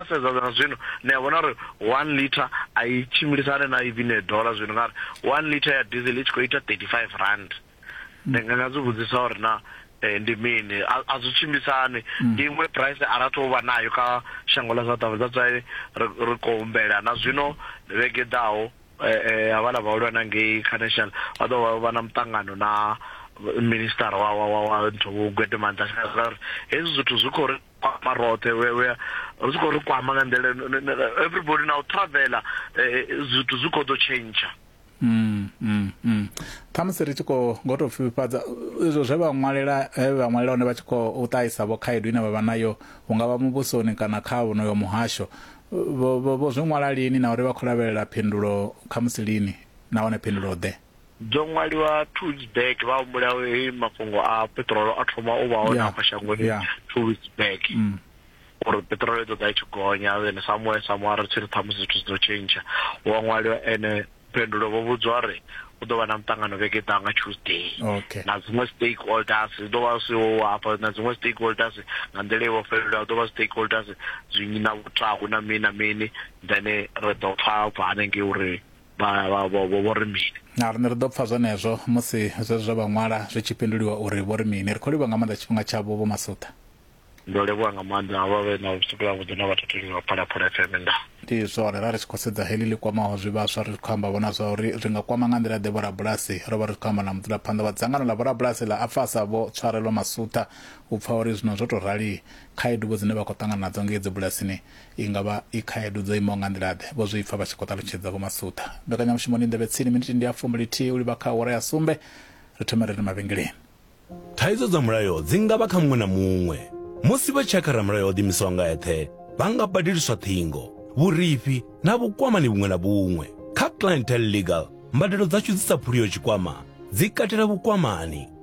Ro sedza zwa zwino, ni a vhona uri one litre a i tshimbilisane na even a dollar zwino ngauri one litre ya diesel i tshi khou ita thirty five rand. Ndi nga nga zwi vhudzisa uri na ndi mini a a zwi tshimbisani ndi iṅwe price a ra thu vha nayo kha shango ḽa South Africa that's why ri ri khou humbela na zwino vhege i ḓaho havhala vhahulwane ngei kha national vha ḓo vha na muṱangano na minister wa wa wa wa nthu Gwede Mantashe uri hezwi zwithu zwi khou ri kwama roṱhe we we zwi khou ri kwama nga nḓila everybody na u travela eh, zwithu zwi khou ḓo tshentsha Mm, mm, mm. khamusi ri tshi khou ngo tou pfifhifhadza izwo zwe vha ṅwalela he vha ṅwalela hone vha tshi khou ṱahisa vho khaedu ine vha vha nayo hu nga vha muvhusoni kana kha vhonoyo muhasho vho zwi ṅwala lini na uri vha khou lavhelela phindulo khamusi lini nahone phindulo ḓe Dzo ṅwaliwa two weeks back vha humbula he mafhungo a peṱirolo a thoma u vha hone afha shangoni two weeks back mm. uri peṱirolo i ḓo ḓa i tshi gonya then somewhere somewhere ri tshi ri ṱhamusi zwithu zwi ḓo tshentsha wa ṅwaliwa ene phendulo vho vhudzwa uri u ḓo vha na muṱangano vhege ḓa nga tuesday okay. na dziṅwe stakeholders zwi ḓo vha zwi hafha na dziṅwe stakeholders nga nḓila i vhofhelelaho ḓo vha stakeholders zwinyi na vhutahu na mini na mini then ri ḓo pfa bva hanengei uri vho ri mini na riṋe ri ḓo pfa zwenezwo musi zwezwo zwa vha ṅwala zwi tshi fhinduliwa uri vho ri mini ri khou livha nga maanḓa tshifhinga tshavho vho masuṱa ndo livhuwa nga maanḓa vha vhe na vhusiku ya vhuḓi na vhathateli vha phalaphala fm nda ndi zwone ra ri tshi khou sedza heḽi ḽi kwamaho zwivhaswa ri khou amba vhona zwa uri ri nga kwama nga nḓila ḓe vhorabulasi ro vha ri khou amba na mudzulaphanḓa wa dzangano ḽa vhorabulasi ḽa afasa vho tshwarelwa masuṱa u pfa uri zwino zwo tou rali khaedu vho dzine vha khou ṱangana nadzo ngei dzibulasini I nga vha i khaedu dzo imaho nga nḓila-ḓe? Vho Zwipfa vha tshi khou ṱalutshedza Vho Masuṱa. Mbekanyamushumoni Nḓevhe Tsini, miniti ndi ya fumi lithihi u livha kha awara ya sumbe, ri thoma ri re mavhengeleni. Thaidzo dza mulayo dzi nga vha kha muṅwe na muṅwe. Musi vha tshi ya kha ramulayo o ḓiimisaho nga eṱhe, vha nga badeliswa ṱhingo, vhurifhi na vhukwamani vhuṅwe na vhuṅwe. Kha Clientele Legal, mbadelo dzashu dzi sa phuliho tshikwama dzi katela vhukwamani.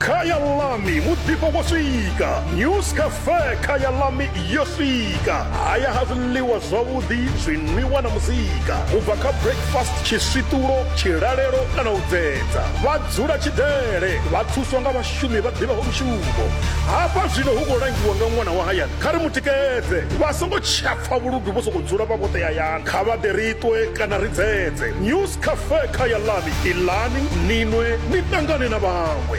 khaya lami muḓifho wo swika news cafe khaya lami yo swika haya ha zwiḽiwa zwavhuḓi zwinwiwa na muzika u bva kha breakfast tshiswiṱulo tshilalelo kana u dzedza vha dzula tshidele vha thuswa nga vhashumi vha ḓivhaho mushumo hafha zwino hu khou langiwa nga ṅwana wa hayani kha ri mu tikedze vha songo tshapfa vhuludu vho sokou dzula vha vhoṱe hayani kha vha ḓe ri ṱwe kana ri dzedze news Khafe kha ya ḽani, ilani, ni nwe, ni ṱangane na vhaṅwe.